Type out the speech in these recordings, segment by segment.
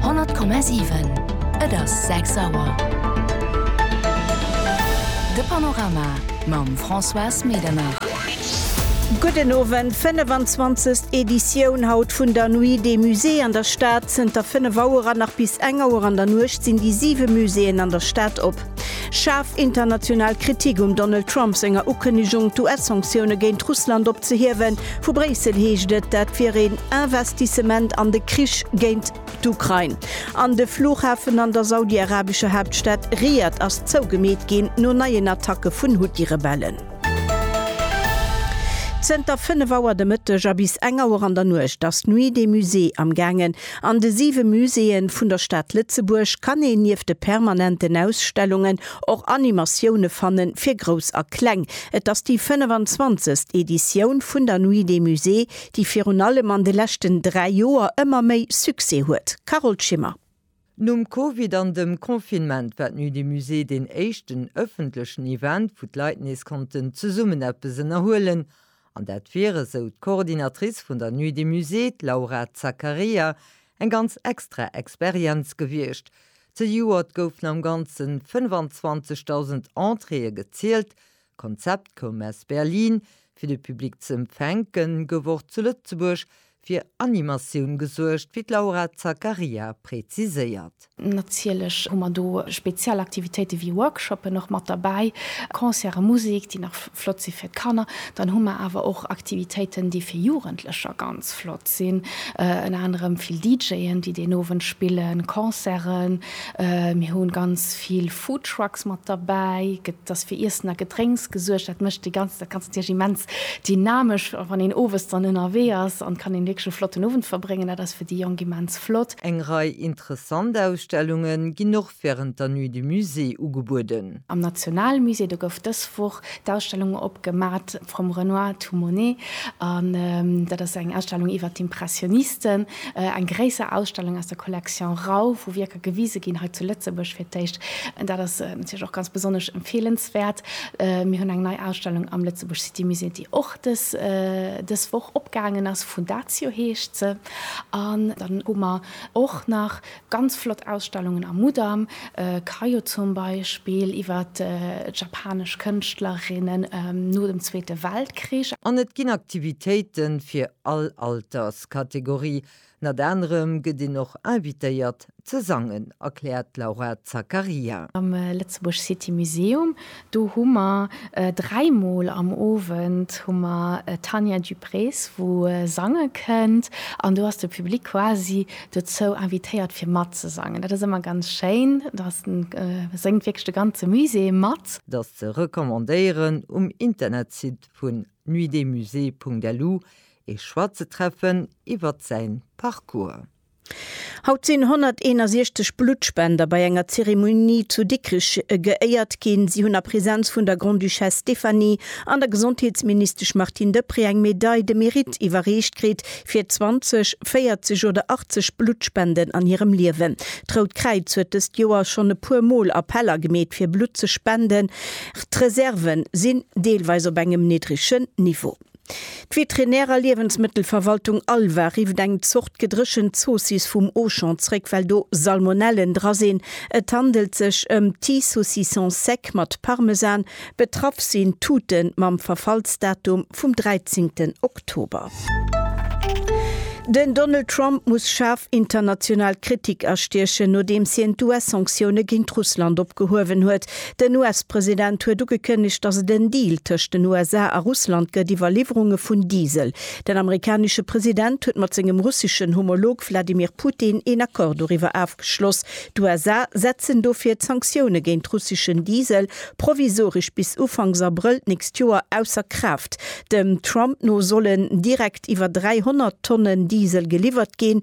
100,7 Et ass 6 Auer. De Panorama mam Françoise Medernach. Gudden Owend, 25. Editioun haut vun der Nuit des Musées an der Stad. Zënter 5 Auer an nach bis eng Auer an der Nuecht sinn déi 7 Muséeën an der Stad op. Schaarf international Kritik um Donald Trump senger Ukënnegung, d'US-Sanktioune géint Russland opzehiewen. Vu Bréissel heescht et, dat wier een Investissement an de Krich géint d'Ukrain. An de Flughafen an der saudi-arabescher Haaptstad Riad ass zougemeet ginn, no neien Attacke vun Huthi-Rebellen. Zënter 5 Auer de Mëtteg a bis eng Auer an der Nuecht ass d'Nuit des Musées amgaangen. An de siwe Muséeë vun der Stad Lëtzebuerg kann een nieft de permanenten Ausstellungen och Animatioune fanne fir Grouss a Kleng. Et ass déi 25. Editioun vun der Nuit des Musées, déi virun allem an de leschten dräi Joer ëmmer méi Succès huet. Carole Schimmer. Nom Covid an dem Confinement war d'Nuit des Musées deen éischten ëffentlechen Event, wou d'Leit nees konnten zesummen eppes ënnerhuelen An dat wier, esou d'Coordinatrice vun der Nuit des Musées, d'Laura Zaccaria, eng ganz extra Experienz gewiescht. Zejoert goufen am Ganze 25.000 Entréeë gezielt. D'Konzept koum aus Berlin. Fir de Public ze empfänken, gouf och zu Lëtzebuerg fir Animatioun gesuergt, wéi d'Laura Zaccaria präziséiert. Natierlech hu mer do speziell Aktivitéite wéi Workshoppen och mat derbäi, Concerte, Musek, déi nach flott si fir d'Kanner. Dann hu mer awer och Aktivitéiten, déi fir Jugendlecher ganz flott sinn, ënner anerem vill DJen, déi deen Owend spillen, Concerten. Mir hu ganz vill Foodtrucks mat derbäi gëtt, dass fir Iessen a Gedrénks gesuergt. Dat mécht de ganzen, dat ganzt natierlech immens dynamesch, wann een owes dann ënnerwee ass an kann een wierklech e flotten Owend verbréngen. Dat ass fir déi Jonk immens flott. Eng Rei interessant Ausstellunge ginn och wärend der Nuit du Musée ugebueden. Am Nationalmusée, do gouf dës Woch d'Ausstellung opgemat From Renoir to Monet an dat ass eng Ausstellung iwwert d'Impressionisten, eng gréisser Ausstellung aus der Collection Rau, wou Wierker, gewise ginn, hei zu Lëtzebuerg fir d'éischt. Dat ass natierlech och ganz besonnesch empfeelenswäert. Mir hunn eng nei Ausstellung am Lëtzebuerg City Musée, déi och dës dës Woch opgaangen ass, Fundatio heescht se. An dann hu mer och nach ganz flott Ausstellungen am Mudam, Kayo zum Beispill iwwer d'japanesch Kënschtlerinnen no dem Zweete Weltkrich. An et ginn Aktivitéite fir all Alterskategorie, Ënnert anerem gëtt een och invitéiert ze sangen, erkläert d'Laura Zaccaria. Am Lëtzebuerg City Museum, do hu mer dräi Mol am Owend hu mer d'Tania Duprez, wou sange kënnt. An do ass de Public quasi dozou invitéiert, fir matzesangen. Dat ass ëmmer ganz schéin. Da séngt wierklech de ganze Musée mat. Et ass ze recommandéieren, um Internetsite vun nuitdesmusées.lu Ee Schwarzentreffen iwwert säin Parcours. Haut sinn 161 Bluttspender bei enger Zeremonie zu Dikrich geéiert ginn. Si hunn a Präsenz vun der Grande-Duchesse Stéphanie an der Gesondheetsministesch Martine Deprez eng Medaille de Mérite iwwerreecht kritt fir 20, 40 oder 80 Bluttspenden an hirem Liewen. D'Rout Kräiz huet dëst Joer schonn e puer Mol Appeller gemeet fir Blutt ze spenden. D'Reserven sinn deelweis op engem niddregen Niveau. D'Veterinär a Liewensmëttelverwaltung Alva rifft eng Zort gedréchent Zoossiss vum Auchan zréck, well do Salmonellen dra sinn. Et handelt sech ëm Petit Saucisson Sec mat Parmesan. Betraff sinn Tuten mam Verfallsdatum vum 13 Oktober. Den Donald Trump muss schaarf international Kritik astiechen, nodeems hien d'US-Sanktioune géint Russland opgehuewen huet. Den US-President huet ugekënnegt, datt et en Deal tëscht den USA a Russland gëtt iwwer Liwwerunge vun Diesel. Den amerikanesche President huet mat sengem russeschen Homolog Wladimir Putin een Accord doriwwer afgeschloss. D'USA setzen dofir d'Sanktioune géint russeschen Diesel provisoresch bis Ufanks Abrëll d'nächst Joer ausser Kraaft. Dem Trump no sollen direkt iwwer 300 Tonnen Diesel geliwwert ginn.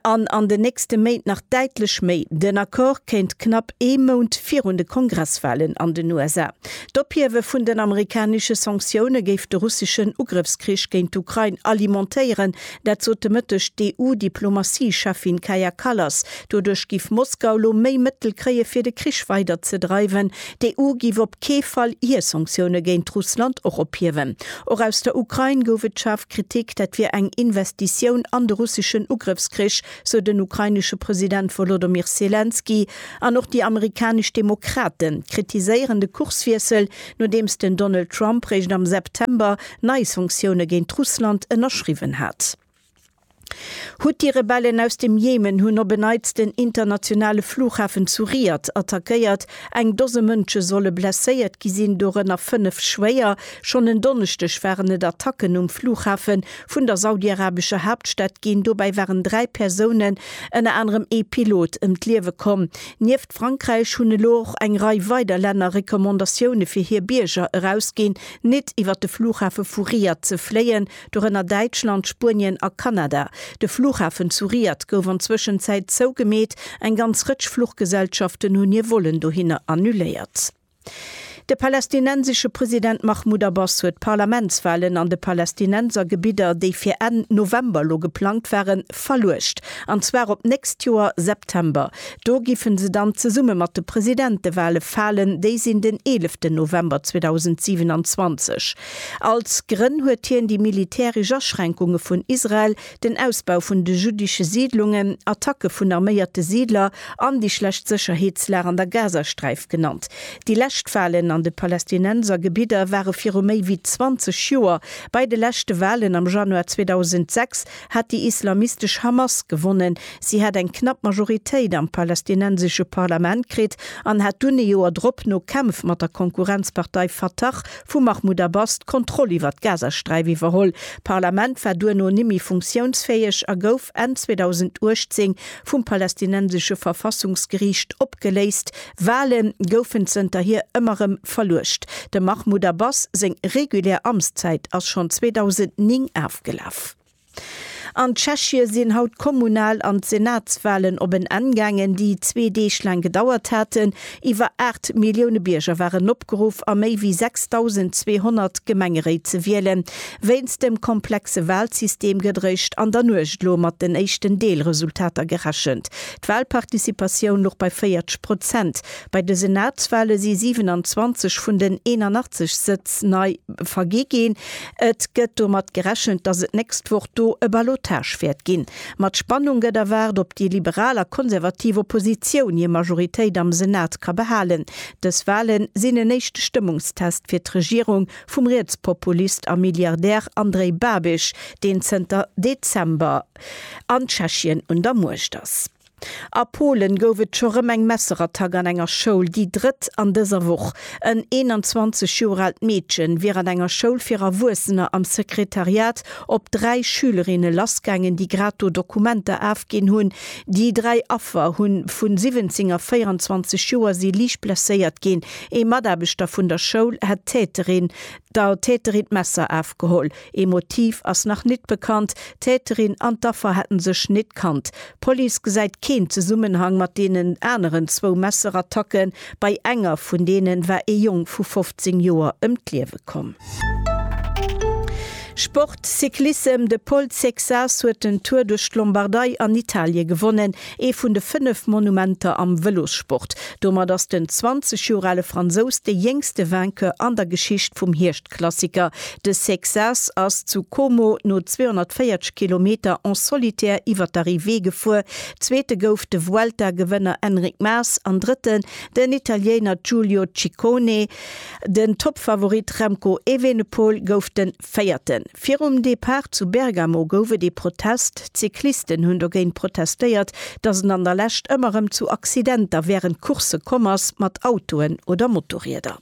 an an den nächste Méint nach däitlech méi. Den Accord kéint knapp ee Mount virun de Kongresswalen an den USA. D'Ophiewe vun den amerikanesche Sanktioune géif de russeschen Ugrëffskrich géint d'Ukrain alimentéieren, dat sot de Mëtteg d'EU-Diplomatie-Cheffin Kaja Kallas. Doduerch giff Moskau lo méi Mëttel kréie fir de Krich weider ze dreiwen. D'EU giff op kee Fall hir Sanktioune géint Russland och ophiewen. Och aus der Ukrain gouf et schaarf. Kritik, dat wier eng Investitioun an de russeschen Ugrëffskrich, sou den ukrainesche President Wolodymyr Selenskyj. An och déi amerikanesch Demokrate kritiséieren de Kurswiessel, nodeems den Donald Trump réischt am September nei Sanktioune géint Russland ënnerschriwwen hat. D'Huthi-Rebellen aus dem Jemen hunn op en Neits den internationale Flughafen zu Riyadh attackéiert. Eng Dose Mënsche solle blesséiert gi sinn, dorënner fënnef schwéier. Schonn en Donneschdeg waren et Attacken um Flughafe vun der saudiarabescher Haaptstad ginn. Dobäi waren dräi Persounen, ënner anerem ee Pilot, ëm d'Liewe komm. Nieft Frankräich hunn elo och eng Rei weider Länner Recommandatioune fir hir Bierger erausginn, net iwwer de Flughafe vu Riyadh ze fléien. dorënner Däitschland, Spuenien a Kanada. De Flughafen zu Riad gouf an Zwëschenzäit zougemeet, eng ganz Rëtsch Fluchgesellschaften hunn hir Vollen dohinner annuléiert. De palästinensesche President Mahmoud Abbas huet d'Parlamentswalen an de Palästinenser Gebidder, déi fir Enn November elo geplangt waren, verluecht, an zwar op d'nächst Joer September. Do giffen se dann zesumme mat de Presidentewale falen, déi sinn den 11 November 2027. Als Grënn huet hien déi militäresch Aschränkunge vun Israel, den Ausbau vun de juddesche Siidlungen, Attacke vun arméierte Siidler an déi schlecht Sécherheetslag an der Gazasträif genannt. Déi lescht Walen an de Palästinenser Gebidder ware viru méi wéi 20 Joer. Bei de leschte Walen am Januar 2006 hat déi islamistesch Hamas gewonnen. Si hat eng knapp Majoritéit am palästinensesche Parlament kritt an hat dunn ee Joer drop no Kämpf mat der Konkurrenzpartei Fatah Vu Mahmoud Abbas d'Kontroll iwwer d'Gazasträif iwwerholl. D'Parlament war duerno nimmi funktiounsfäeg a gouf Enn 2018 vum palästinensesche Verfassungsgeriicht opgeléist. Wale goufen zënterhier ëmmer rëm verluecht. Dem Mahmoud Abbas seng regulär Amtszäit ass schonn 2009 afgelaf. An Tschechie sinn haut d'Kommunal an d'Senatswalen op en Enn gaangen, déi zwee Deeg laang gedauert haten. Iwwer 8 Millioune Bierger waren opgeruff, a méi wéi 6.200 Gemengeréit ze wielen. Wéinst dem komplexe Walsystem gëtt eréischt an der Nuecht elo mat den éischten Deelresultater gerechent. D'Walparticipatioun louch bei 40 Prozent. Bei de Senatswale si 27 vun den 81 Sëtz nei vergi ginn. Et gëtt domat gerechent, datt et d'nächst Woch do e Ballottage wäert ginn. Mat Spannung gëtt erwaart, ob déi liberal a konservativ Oppositioun hir Majoritéit am Senat ka behalen. Dës Wale sinn en éischte Stëmmungstest fir d'Regierung vum Rietspopulist a Milliardär Andrej Babiš, deen zënter Dezember an Tschechien un der Muecht ass. A Polen gouf et scho rëm eng Messerattack an enger Schoul, déi drëtt an dëser Woch. En 21 Joer aalt Meedche wier an enger Schoul fir Erwuessener am Sekretariat op dräi Schülerinne lassgaangen, déi grad do Dokumenter afginn hunn. Déi dräi Affer hu vu 17 a 24 Joer si liicht blesséiert ginn. Ee Mataarbechter vun der Schoul hätt d'Täterin der Täterin d'Messer afgeholl. Ee Motiv ass nach nit bekannt. D'Täterin an d'Affer hätten sech nit kannt. D'Police gesäit keen Zesummenhang mat deenen aneren zwou Messerattacken. Bei enger vun deenen war ee Jong vu 15 Joer ëm d'Liewe komm. Sport, Cyclissem, De Pol Cexas huet den Tour duerch d'Lombardei an Italie gewonnen, ee vun de fënnef Monumenter am Vëlossport. Domat ass den 20 Joer ale Fransous de jéngste Vainqueur an der Geschicht vum Hierschtcross. Klassiker, de Sexas ass zu Como no 240 Kilometer en solitaire iwwer d'Arrivée gefuer, Zweete gouf de Vuelta-Gewënner Enric Mas an Drëtten den Italiener Giulio Ciccone. Den Toppfavorit Remco Evenepoel gouf den Véierten. Virum Depart zu Bergamo gouf et ee Protest. D'Cyclisten hunn dogéint protestéiert, datt et an der Lescht ëmmer erëm zu Accidenter wärend Coursse komm ass, mat Autoen oder Motorrieder.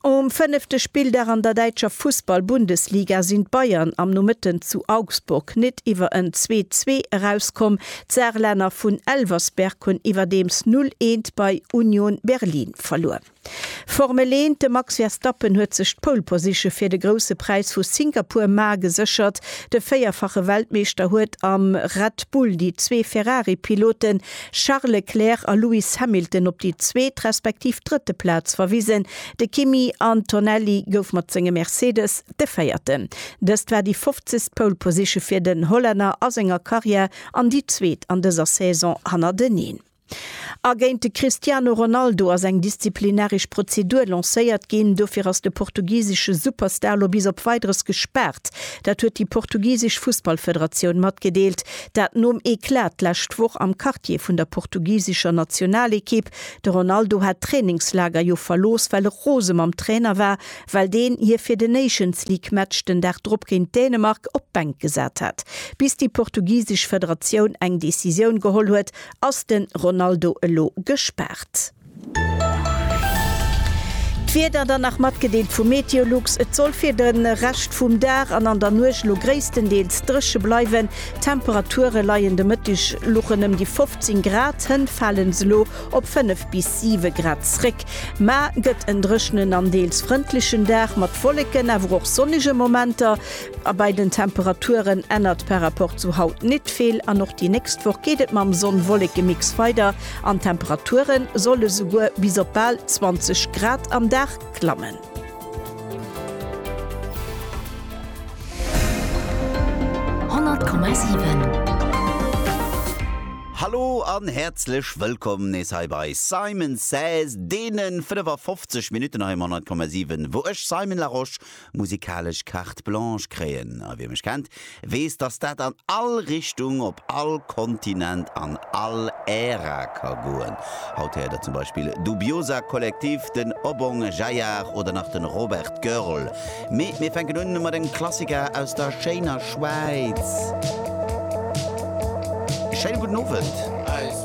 Um fënnefte Spilldag an der däitscher Fussball-Bundesliga sinn d'Bayern am Nomëtten zu Augsburg net iwwer en 'Zwee-Zwee' erauskomm. D'Saarlänner vun Elversberg hunn iwwerdeems 'Null Eent' bei Union Berlin verluer. Formel 1, De Max Verstappen huet sech d'Pole Position fir de Grousse Präis vu Singapur mar geséchert. De véierfache Weltmeeschter huet am Red Bull déi zwee Ferrari-Piloten Charles Leclerc a Lewis Hamilton op déi zweet respektiv drëtte Plaz verwisen. De Kimi Antonelli gouf mat sengem Mercedes de Véierten. Dëst war déi fofzegst Pole Position fir den Hollänner a senger Karriär an déi zweet an dëser Saison hannerteneen. A géint de Cristiano Ronaldo ass eng disziplinaresch Prozedur lancéiert ginn. Dofir ass de portugisesche Superstar elo bis op Weideres gespaart. Dat huet déi portugisesch Fussballfederatioun matgedeelt. Dat nom Eclat d'lescht Woch am Quartier vun der portugisescher Nationalekipp. De Ronaldo hat d'Trainingslager jo verlooss, well e rose mam Trainer war, well deen hie fir de Nations League Match den Dag drop géint Dänemark op d'Bänk gesat hat. Bis déi portugisesch Federatioun eng Decisioun geholl huet, ass de Ronaldo elo gespaart. D'Wieder dann nach matgedeelt vu Meteolux, Et soll fir de Rescht vum Dag an an der Nuecht elo gréisstendeels dréche bleiwen. D'Temperature leien de Mëtteg luchen ëm déi 15 Grad, hënt fale se elo op 5 bis 7 Grad zréck. Ma gëtt en dréchenen an deels frëndlechen Dag mat Wolleken, awer och sonnege Momenter. A bei den Temperaturen ännert par rapport zu haut net vill an och déi nächst Woch geet et mam Sonn-Wolleke-Mix weider. An d'Temperature solle souguer bis op bal 20 Grad am Dag klammen. Hallo an häerzlech wëllkomm nees hei bei Simon Says, deenen 55 Minutten hei um 100,7, wou ech, Simon Larosche, musikalesch Carte Blanche kréien a wie mech kennt, weess, dass dat an all Richtung, op all Kontinent, an all Ära ka goen. Haut héiert der zum Beispill Dubiosa Kollektiv, den Obong Jayar oder nach de Robert Görl. Mee mir fänken un mat engem Klassiker aus der schéiner Schwäiz. Schéine gudden Owend.